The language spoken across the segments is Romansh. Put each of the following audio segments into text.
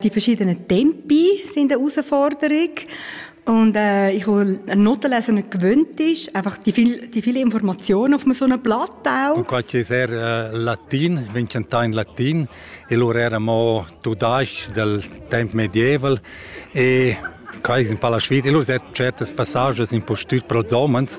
Die verschiedenen Tempi sind eine Herausforderung. Und äh, ich, wo ein Notenlesen nicht gewöhnt ist, einfach die, viel, die viele Informationen auf so einem Blatt auch. Und qua è sehr eh, latin, vincentà in latin, e loro erano tudaschi del tempo medieval e qua è un po' la sfida. E loro certi passaggi un po' studi prosomens,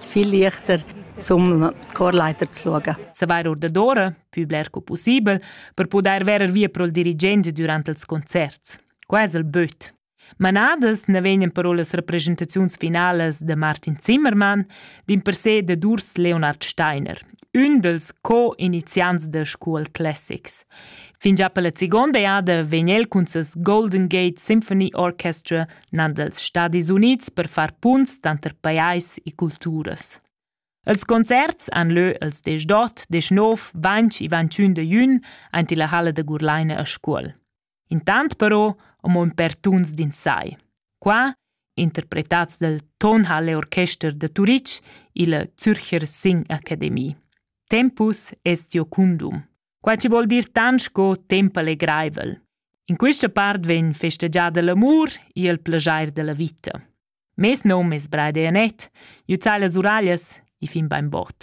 viel leichter zum Chorleiter zu schauen. Se var ordadora, più blerco possibel, per poder verer via pro il dirigente durante els concerts. Quasi il böt. Manadas ne vegnan però las representaziuns finales de Martin Zimmermann, din per se de Durs Leonard Steiner, un dels co-iniziants de School Classics. Fin già per la seconda jada vegn el cun ses Golden Gate Symphony Orchestra nan dals Stadis Unids per far punts tanter pajais e culturas. Els concerts han lö els desch d'ot, desch nov, vanch e vantschün de jün aint illa halla da Gurlaina a Scuol. Intant però amo ün per tuns d'insai. Qua, interpretats dal Tonhalle Orchester de Turitg illa Zürcher Sing Academie. Tempus est Jocundum. Quai chi vuol dir tant sco temp allegraivel. In quista part vegn festegiada l'amur e il plajair da la vita. Mes nom es Braide Anet, jü zai las uraglias e fin bain bod.